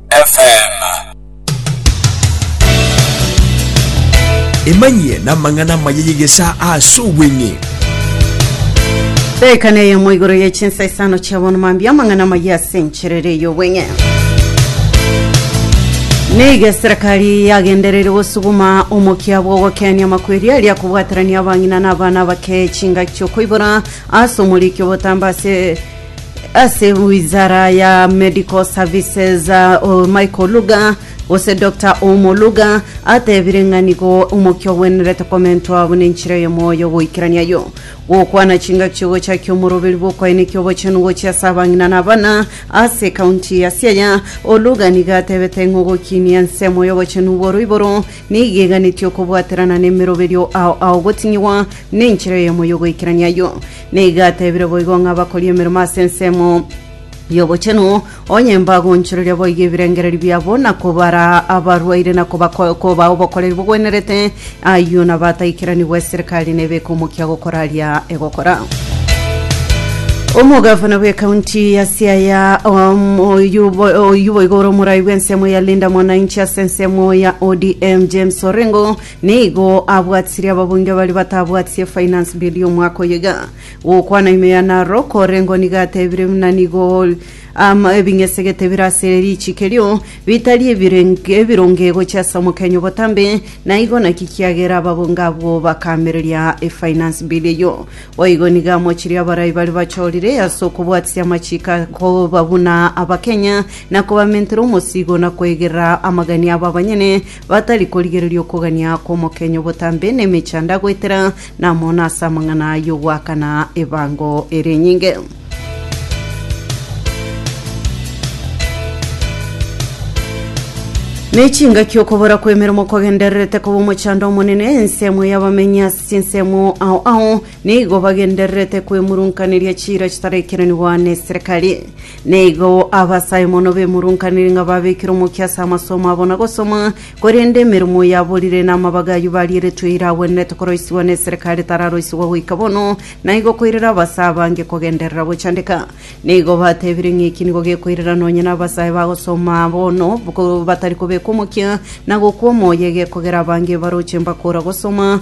FM. Emanyie namang'ana amaya y'egesaa ase obweng'e. Daika neye mo igoro ye chinsa isano chia bono mambia amang'ana maye ase encherere y'obweng'e niga eserekari yagendereire gosuguma omokia bwa ogokenia amakweri aria kobwaterania abang'ina na abana abake chingaki chiokoibora ase omoriki obotamba ase ase wizara ya medical services uh, michael luga gose dr omoluga atebire ng'a nigo omokia ogwenerete komentwa buna enchera y'omoyo goikerania yo gokwana chingaki ogochakia omoroberi bw'okoenekia obochenu gochia ase abang'ina na abana ase kaunti ya siaya oluga niga atebete ng'a ogokinia ensemo y'obochenu bw'oroiboro niga eganetie okobwaterana n'emeroberio ao ao gotinyiwa n'enchera y'omoyo goikerania yo Nigo atebire boigo ng'a bakorie emeremo ase ensemo y'obochenu, onye mbagonchoreria boigo ebirengererio biabo, na kobaraa abarwaire, na kobako- kobaa obokoreri bogwenerete, ayio nabo ataikeranigwe eserikari nebe ekomokia gokora aria egokora. Omogavana bw'ekaunti ya Siaya um, oyio bo- oyio boigo ore omorai bw'ensemo ya Linda Mwananchi ase ensemo ya ODM James Orengo Nigo abwatirie ababunge baria batabwatirie finance bill y'omwaka oyo iga. Gokwana ime ya Narok koreng'o nigo atebire buna nigo um, ebing'esegete bire ase riichiko erio bitari ebireng- ebironge gochia ase omokenya obotambe, na igo naki kiagera ababunge abwo bakamereria efinance bill eyio. Boigo nigo amochirie abarai baria bachorire ase okobwatisia amachiko akoba buna abakenya, na kobamentera omosigo na koegerera amagania abo abanyene batari korigereria okogania kw'omokenyu botambe nemechanda, goetera namona ase amang'ana y'ogoakana ebango erinyinge. Nechingaki okobora kw'emeremo kogendererete koba omochando omonene ensemo y'abamenyi ase chinsemo ao ao nigo bagendererete kwemurunkaneria chiira chitarekeranigwa neserikari. Nigo abasae mono bemurunkanire ng'a babekire omokia ase amasomo abo na gosoma, korende emeremo yaborire na amabaga ayio barieretwe ira agwenerete koroisigwa n'eserekari etararoisigwa goika bono, na igo koirera abasae abange kogenderera gochandeka. Nigo batebire ng'a eki nigo gekoirera nonye nabasae bagosoma bono ko batari kobeka omokia na gokwa omoyo egekogera abange baroche mbakora gosoma,